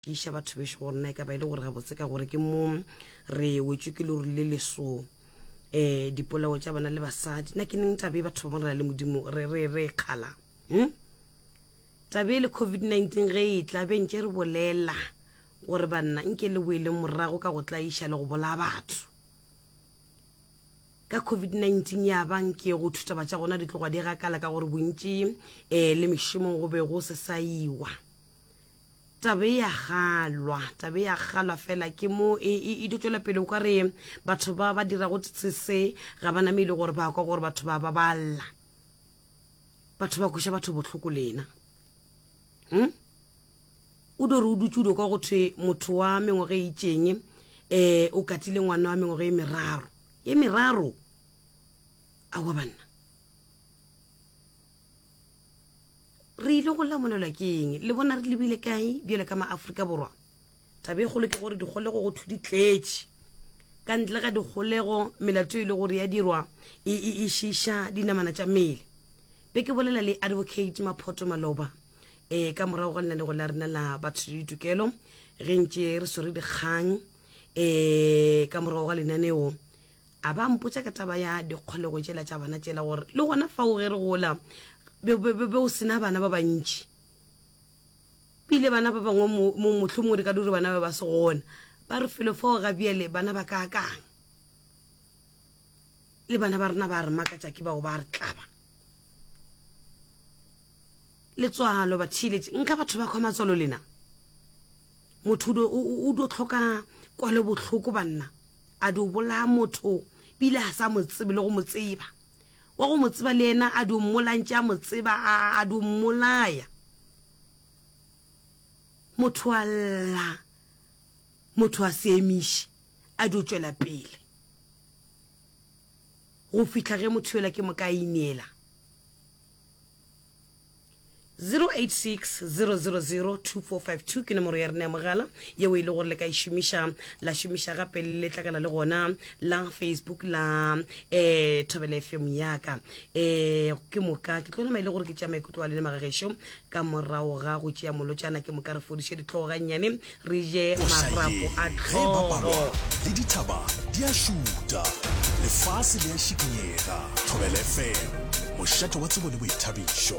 Tiiša batho bešo go nna e ka ba e le gore gabotse ka gore ke mo re wetšwe ke lori le leso um eh, dipolao tša bana le basadi na ke neng tabe batho ba bona le modimo re re re kgala um hmm? tabe le covid-19 ge e tla be ntše re bolela gore banna nke le boele morago ka go tlaiša le go bolaya batho ka covid-19 ya bang ke go thutaba tša gona di tloga di gakala ka gore bontši um le mešomong go be go se sa iwa Taba e ya galwa, taba e ya galwa fela ke mo e, e, e tšwela pele o ka re batho ba ba dirago se ga ba name e le gore ba kwa gore batho ba ba balla batho ba kweša batho bohloko lena hmm? o do re o dutse o do kwa go thwe motho wa mengwaga e itseng um eh, o katile ngwana wa mengwaga e meraro e meraro a wa banna re ile go lamolelwa ke eng le bona re lebile kae bjale ka maaforika borwa taba e kgolo ke gore dikgolego go thu di tletše ka ntle ga dikgolego melato e le gore ya dirwa e, e, e šiša dinamana tša mmele be ke bolela le advocate maphoto maloba um ka morago ga lenalego la rena la batho le ditokelo ge ntše re swere dikgang um ka morago ga lenaneo A ba mpotša ka taba ya dikgolego tšela tša bana tšela, gore le gona fao ge re gola be, be, be, be o sena bana ba bantši. Pele bana ba bangwe mo, mo, mohlomongwe re ka dure bana ba ba se gona. Ba re felo fao ga bjale bana ba ka kang. Le bana ba rena ba re makatša ke bao ba re tlaba. Letswalo ba theeletše nka batho ba kgwa matswalo lena. Motho o do, o, o do tlhoka kwalo bohloko banna. A di o bolaya motho bile ga sa mo tsebe le go mo tseba? Wa go mo tseba le yena a di o mmolantše a mo tseba a, a di o mmolaya? Motho a lla, motho a se emiše, a di o tšwela pele go fihla ge motho yola ke mo ka inela. 0860002452 ke nomoro ya rena ya mogala yeo e le gore le ka e šomiša la šomiša gape le tlakana le gona la facebook la um eh, thobela fm yaka um ke moka ke tlo nama e le gore ke tšea maikutlo a lene magagešo ka morago ga go tšea molotšana ke moka re fodiše ditlhogo gannyane re je marapo a tlhogo le dithaba di a šuta lefase le a šikinyega thobela fm mošate wa tsebo le boithabišo